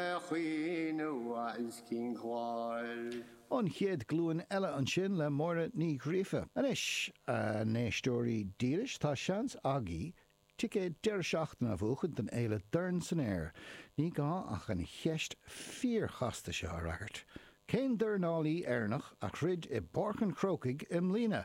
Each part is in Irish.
a chaoineadh agus cinn cláir. An Chéad Ghlúin Eile ansin le Máire Ní Ghríofa. Anois, a n-éisteoirí dílis, tá seans agaibh ticéad deireadh seachtaine a bhuachaint don fhéile Dorn san Aer. Ní gá ach an cheist fíor-chasta seo a fhreagairt, Cén dornálaí Éireannach a throid i bPáirc an Chrócaigh i mbliana?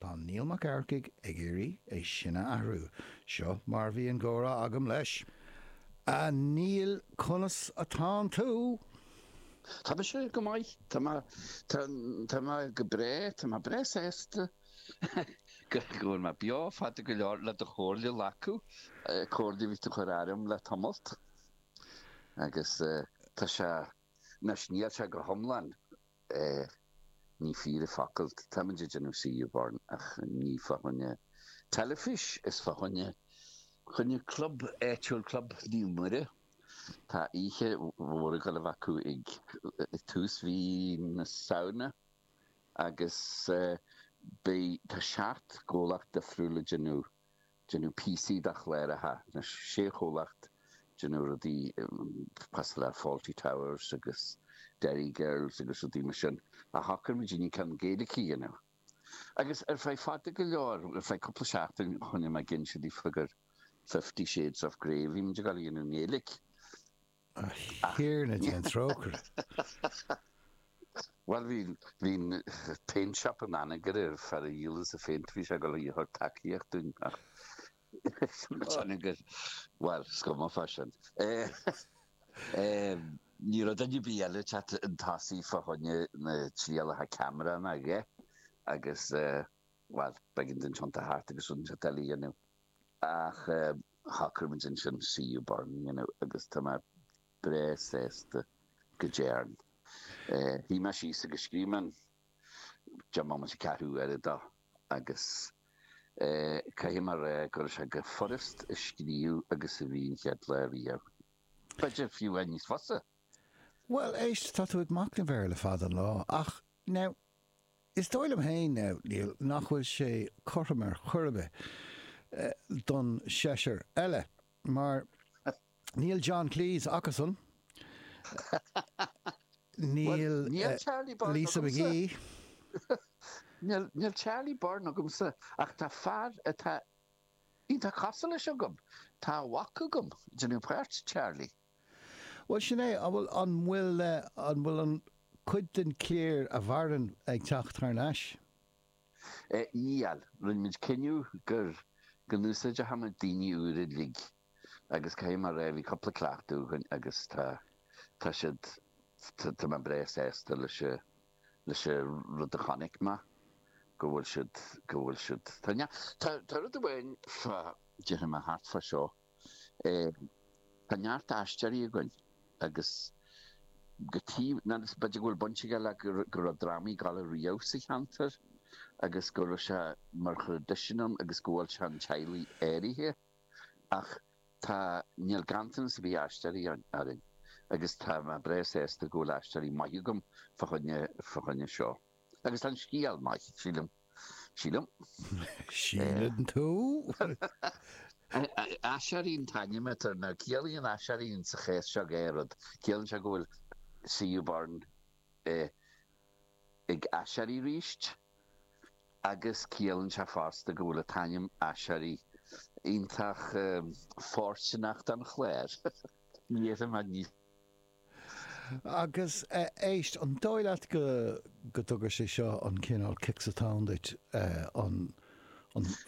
Tá Niall Mac Eachmharcaigh ag iarraidh é sin a athrú. Seo mar a bhí an gcomhrá agam leis. A Niall, conas atánn tú? Tá mise go maith. Tá mé, tá mé go breá, tá mé breá sásta go bhfuil mé beo fada go leor le do chomhairle a ghlacadh. Comhairle a bhí tú a chur orm le tamallt. Agus tá sé. Anois, níl sé go hiomlán, ní fíor a focal, táimid ag déanamh C.U. Burn ach ní fá choinne teilifís, is fá choinne choinne club áitiúil, Club Naomh Muire. Tá oíche mhór ag gabháil a bheith acu ag tús mhí na Samhna agus beidh, tá seacht gcomhlacht difriúil ag déanamh Déanamh píosaí de chláracha na sé chomhlacht ag déanamh rudaí cosúil le Fawlty Towers agus Derry Girls agus rudaí mar sin, ach shocair muidinne ceann Gaeilge a dhéanamh. Agus ar feadh fada go leor, ar feadh cúpla seachtain, choinnigh mé ag inse daofa gur Fifty Shades of Grey a bhí muid ag gabháil a dhéanamh i nGaeilge. A Thiarna déan trócaire! Bhuel, bhí, bhí paint shop in Anagaire, fear a dhíolas an phéint, bhí sé ag dul a thabhairt tacaíocht dúinn ach bhuel, is cuma fá sin. Ní raibh duine ar bith eile teacht chun tosaigh fá choinne na trialacha ceamara ná a dhath agus bhuel, b'éigean dúinn tiontú thart agus rudaí eile a dhéanamh. Ach shocraigh muid ansin C.U. Burn a dhéanamh agus tá mé breá sásta go dtearn. Shuigh mé síos agus scríobh mé an deich mbomaite is ceathrú uaire dó agus caithfidh mé a rá go raibh sé chomh furast a scríobh agus a bhí an chéad lá riamh. B'fhéidir fiú amháin níos fusa! Bhuel, éist, tá tú ag macnamh air le fada an lá ach, now, Is dóigh liom féin, Niall, nach bhfuil sé cothrom ar chor ar bith don seisear eile, mar níl John Cleese acusan, níl Lisa McGee, níl Charlie Burn agamsa, ach tá fear atá iontach cosúil leis agam, tá a mhac agam, ag déanamh páirt Charlie. Bhuel, sin é. An bhfuil, an bhfuil, an bhfuil an chuid den chliar a mhaireann ag teacht thar n-ais? Níl. Rinne muid cinneadh gur, go n-úsáideochadh muid daoine úra uilig agus caithfidh mé a rá, bhí cúpla cleachtadh againn agus tá, tá siad, tá mé breá sásta leis an, leis an rud a chonaic mé, go bhfuil siad, go bhfuil siad, tá neart, tá, tá rud amháin fá, déarfaidh mé, thart fá seo. Tá neart aisteoirí againn agus goidé an, b'fhéidir go bhfuil baint aige le go raibh drámaí ag gabháil ariamh sa cheantar agus go raibh sé mar thraidisiún ann agus go bhfuil sé in teaghlaigh áirithe ach tá níl ganntanas ar bith aisteoirí orainn agus tá mé breá sásta go bhfuil aisteoirí maithe agam fá choinne fá choinne seo. Agus tá an scéal maith, sílim. Sílim. Síleann tú? Aiséirí an t-ainm atá air. Now, ciallaíonn aiséirí insa chás seo dhá rud. Ciallaíonn sé go bhfuil CU Burn ag aiséirí arís agus ciallaíonn sé fosta go bhfuil an t-ainm Aiséirí iontach fóirsteanach don chlár. Ní fhéadfainn a bheith níos. Agus éist, an dóigh leat go dtug sé seo an cineál cic sa tóin duit, an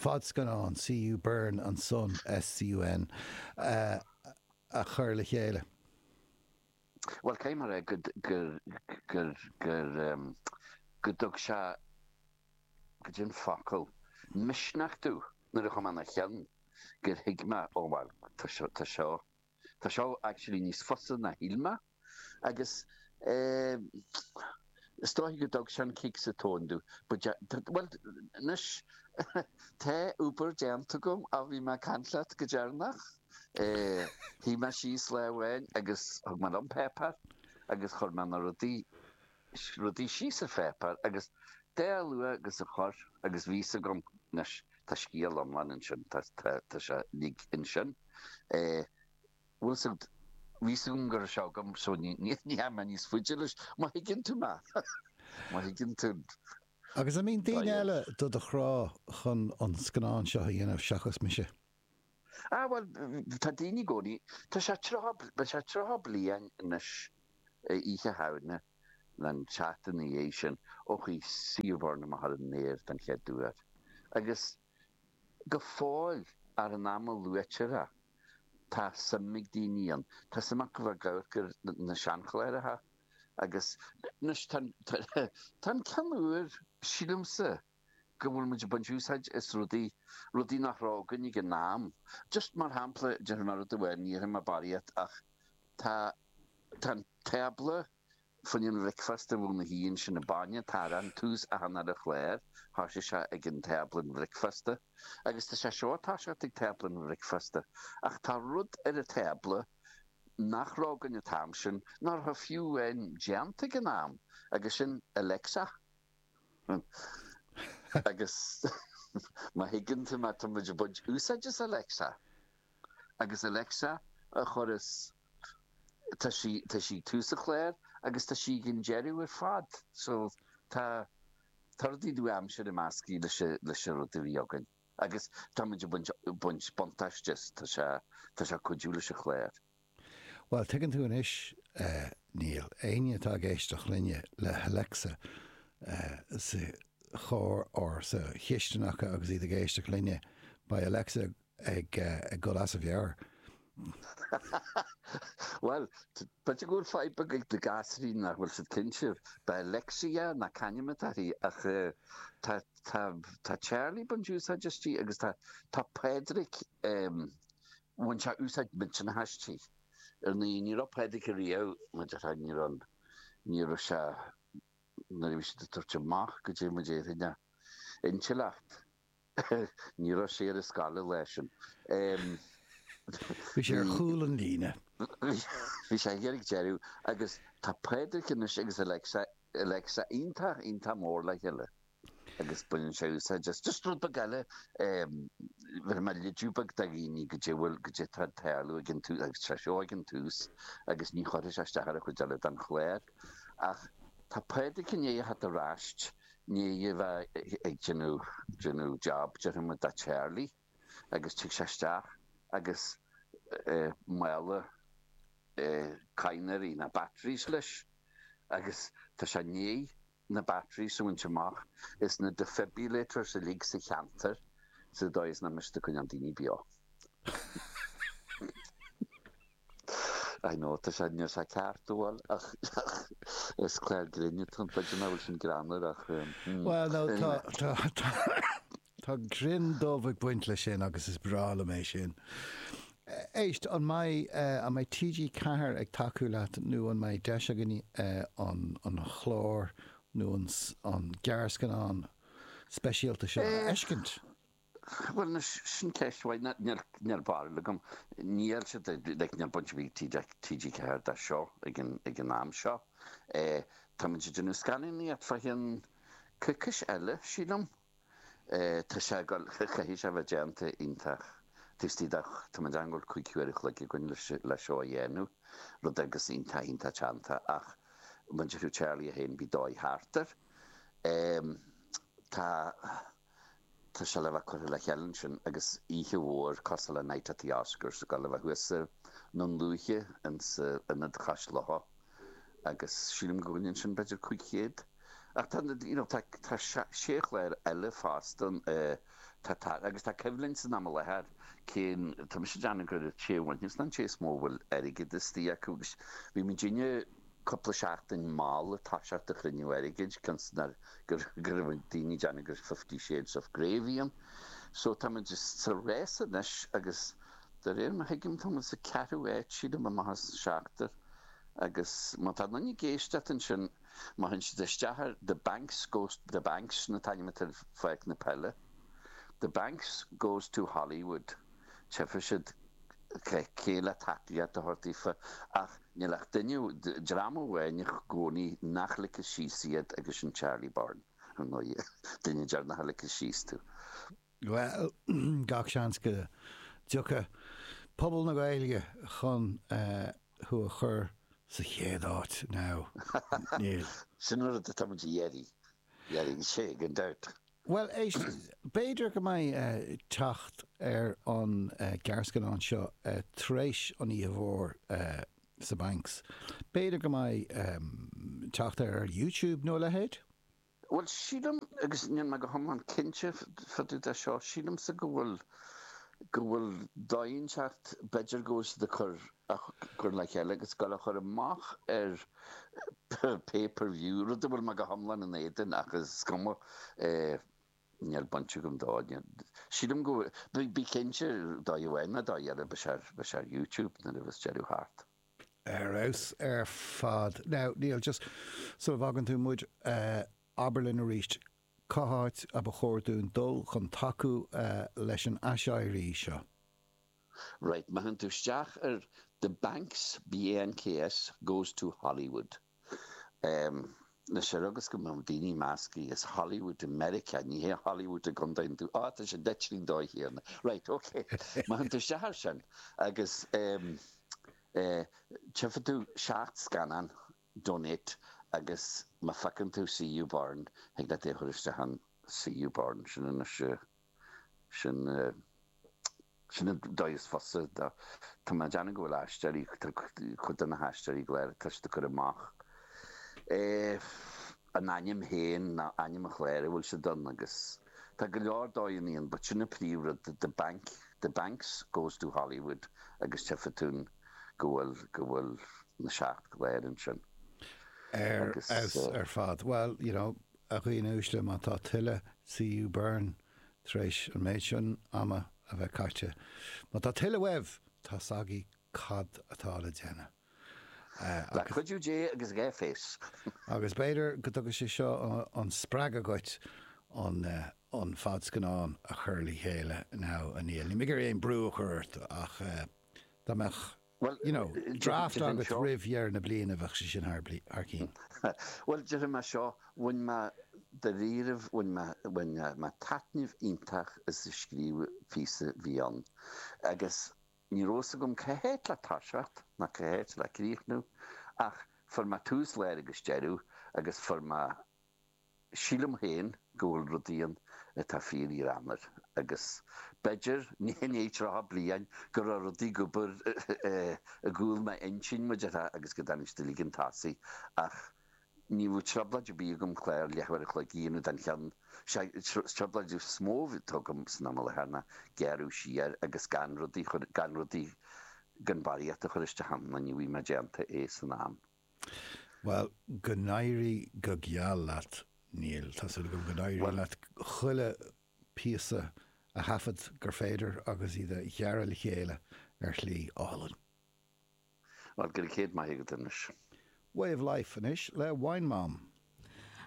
fadscannán CU Burn and Son, SUN, a chur le chéile? Bhuel, cé mar é go dtug sé, goidé an focal, misneach domh nuair a chuaigh mé ina cheann gur thuig mé, ó bhuel, tá seo, Tá seo actually níos fusa ná shíl mé agus eh is dóigh go dtug sin cic sa tóin domh but yeah bhuel anois tá obair déanta agam ó bhí mé ag caint leat go deireanach eh shuigh mé síos lá amháin agus thug mé liom páipéar agus chuir mé na rudaí Scríobh rudaí síos ar pháipéar agus chomh luath agus a chuir agus bhí a fhios agam anois tá scéal iomlán ansin, tá tá sé uilig ansin. Bhfuil 's a'd, bhí a fhios agam go raibh sé agam so ní ní ní theachaigh mé níos faide leis, má thuigeann tú mé, má thuigeann tú. Agus an mbíonn daoine eile do do chrá chun an scannán seo a dhéanamh seachas mise? Ah bhuel, tá daoine i gcónaí, tá sé tríocha, beidh sé tríocha bliain anois, Oíche Shamhna nó an tseachtain ina dhiaidh sin, ó chuaigh CU Burn amach ar an aer den chéad uair. Agus go fóill, achan am a luaitear é, tá suim ag daoine ann, tá suim acu a bheith ag amharc ar na seanchláracha, agus anois tá an ceann úr, sílimse, go bhfuil muid ag baint úsáid as rudaí, rudaí nach raibh againn ag an am. Just mar shampla, déarfaidh mé rud amháin, ní dhéarfaidh mé barraíocht, ach tá, tá an tábla fá choinne an bhricfeasta a bhualadh thí ansin, an bainne, atá ar an tús achan uile chlár, tá sé seo ag an tábla an bhricfeasta. Agus tá sé seo atá siad ag tábla an bhricfeasta. Ach tá rud ar an tábla nach raibh againn an t-am sin, nach raibh fiú amháin déanta ag an am, agus sin Alexa. Agus má thuigeann tú mé, tá muid ag baint úsáid as Alexa. Agus Alexa an córas, tá sí, tá sí ag tús an chláir agus tá sí ag an deireadh ar fad. So, tá, tá rudaí nua-aimseartha measctha leis, leis an rud a bhí againn. Agus tá muid ag baint, baint buntáiste as, tá sé, tá sé ag cuidiú leis an chláir. Bhuel, tuigeann tú anois, níl éinne atá ag éisteacht linne le hAlexa sa charr or sa chistin acu agus iad ag éisteacht linne, beidh Alexa ag dul as a mheabhair. Bhuel, b'fhéidir go bhfuil fadhb ag na gasúraí nach bhfuil siad cinnte, beidh Alexia, nó c'ainm atá uirthi, ach tá Charlie, ag baint úsáid aisti agus tá Pádraic, Bhain sé úsáid mhillteanach aisti. Ar ndóigh, ní raibh Pádraic ariamh, mar a déarfá, ní raibh, ní raibh sé nuair a bhí siad ag tabhairt amach go dtéadh muid fhéin a intleacht, ní raibh sé ar an scoil an lá sin. Bhí sé ar chúl an líne. Bhí sé thiar ag deireadh agus tá Pádraic anois agus Alexa iontach, iontach mór le chéile. agus baineann sé úsáid as just rud beag eile, bheireann mé léiriú beag do dhaoine goidé, bhuel, goidé atá ag tarlú ag an tús, agus tá seo ag an tús, agus ní chuirfidh sé isteach ar an chuid eile den chlár. Ach tá Pádraic i ndiaidh a theacht ar ais, i ndiaidh a bheith ag déanamh, déanamh job, déarfaidh muid, do Charlie, agus tig sé isteach, agus mála cadhnraí nó batteries leis, agus tá sé i ndiaidh na batteries a bhaint amach as na defibrillators uilig sa cheantar sa dóigh is nach mbeidh siad ag coinneáil daoine beo. I know, tá sé, níl sé ceart, an bhfuil, ach is clár grinn atá ann chuid de mé an bhfuil sin greannmhar ach. Well, no, tá, tá, tá. Tá greann dubh ag baint leis sin agus is breá liom é sin. Éist, an mbeidh, an mbeidh TG Ceathair ag tacú leat nó an mbeidh deis againn an, an clár nó an, an gearrscannán speisialta seo a fheiscint? Bhuel anois, sin ceist mhaith. Níor, níor, níor mhaith liom, níl siad ag, like, níl baint ar bith ag TG, TG Ceathair dó seo ag an, ag an am seo. Táimid ag déanamh scannánaíocht faoi cheann coicís eile, sílim. Tá sé ag dul, caithfidh sé a bheith déanta iontach tuiscint ach tá mé ag déanamh go bhfuil cúig huaire an chloig againn le seo a dhéanamh, rud eile agus iontach iontach teannta ach muintir Thí Charlie féin, beidh dóigh thart air. Tá, tá sé le bheith curtha le chéile ansin agus oíche mhór cosúil le Night at the Oscars ag dul a bheith thuas i nDún Lúiche, ins an Ionad Cois Locha. agus sílim go gcoinníonn sin b'fhéidir 500. Ach tá, you know, tá sé chlár eile fosta, tá, tá, agus tá coimhlint san am i láthair, cén, tá mise ag déanamh gur an té a bhainfeas ná an té is mó a bhfuil airgead istigh acu agus bhí muidinne cúpla seachtain mall ag toiseacht ar chruinniú airgid, cionn is gur, go raibh daoine ag déanamh gur Fifty Shades of Grey a bhí ann. So tá muid sa rás anois agus. De réir mar a thuigim, táimid sa ceathrú áit, sílim, amach as an seachtar. Agus má tá aon duine ag éisteacht ansin, má théann siad isteach ar The Banks Goes, The Banks sin an t-ainm atá ar pháirc na peile, The Banks Goes to Hollywood, tífidh siad cé le tacaíocht a thabhairt daofa. Ach níl ach duine, dream amháin i gcónaí nach ligfidh síos iad agus sin Charlie Burn, ar ndóigh. Duine deireanach a ligfidh síos tú. Bhuel, gach seans go dtiocfaidh pobal na Gaeilge chun thú a chur sa chéad áit. Now, níl. Sin an rud atá muid a iarraidh. Is é an dirt. Bhuel, éist, b'fhéidir go mbeidh teacht ar an gearrscannán seo tar éis an oíche mhór sa Banks. B'fhéidir go mbeidh teacht air ar YouTube nó a leithéid? Bhuel, sílim, agus níl mé go hiomlán cinnte fá dtaobh de seo, sílimse go bhfuil, go bhfuil dóigh inteacht, b'fhéidir go bhfuil siad ag cur, á chur le chéile, agus ag dul á chur amach ar pay per view, rud a bhfuil mé go hiomlán in éadan, ach is cuma, níl baint agam dó, sílim go bhfuil, bí cinnte, dóigh amháin nó dóigh eile, beidh sé, beidh sé ar YouTube nuair a bheas deireadh thart. ar fheabhas ar fad. Now, Niall, just sula bhfágann tú muid, abair linn arís cá háit a ba chóir dúinn dul chun tacú leis an aiséirí seo. Right, ma théann tú isteach ar The Banks, BANKS, Goes to Hollywood. leis seo agus go mbeadh daoine ag meascadh. Is Hollywood i Meiriceá, ní hea Hollywood i gContae an Dúin. Á, tá sé deich dtí a dó, a Thiarna. Raight, ok. Má théann tú isteach air sin agus tchifidh tú seacht scannán, donate, agus má phiocann tú CU Burn, thig leat é a chur isteach ann. CU Burn, sin anois. sin an dóigh is fusa. Tá mé ag déanamh go bhfuil aisteoirí, cuid de na haisteoirí go léir ag tuiscint a chur amach. An ainm féin ná ainm an chláir a bhfuil siad ann agus tá go leor dóigheanna ann but sin an príomh-rud, the bank, the banks goes to Hollywood agus tchifidh tú go bhfuil, go bhfuil na seacht gclár ansin. Ar fad. Well, you know, A dhaoine uaisle, má tá tuilleadh CU Burn tar éis an méid sin ama a bheith caite, má tá tuilleadh uaibh, tá 's agaibh cad atá le déanamh. Le cuidiú Dé agus dhá phéas. Agus b'fhéidir go dtuga sé seo an spreagadh dhuit an fadscannán a chur le chéile now, a Niall. Níl mé ag iarraidh aon bhrú a chur ort ach dá mbeadh. Bhuel, you know, draft agat roimh dheireadh na bliana, bheadh sé sin thar cinn. Bhuel, déarfaidh mé seo, bhain mé dairíribh, bhain mé, bhain mé taitneamh iontach as a scríobh, píosa beag ann agus ní raibh fhios agam cá háit le toiseacht ná cá háit le críochnú ach fuair mé tús, lár agus deireadh agus fuair mé. Sílim féin go bhfuil rud éigin atá fíor-ghreannmhar, agus b'fhéidir, ní inné, tríocha bliain go raibh rud ag obair i gcúl m'intinn, mar a déarfá, agus go dtáinig sé uilig chun tosaigh, ach ní raibh trioblóid ar bith agam clár leathuair a chloig a dhéanamh den cheann seo, trioblóid is mó atá agam san am i láthair ná gearradh siar agus gan rudaí, gan rudaí, gan barraíocht a chur isteach ann, nó ní bhfaighidh mé déanta é san am. Bhuel, go n-éirí go geal leat, Niall. Tá súil agam go n-éiríonn leat chuile phíosa a thaifead gur féidir agus iad a ghearradh le chéile ar shlí álainn. Bhuel, go raibh céad maith agat anois. Way of Life anois le Wine Mom.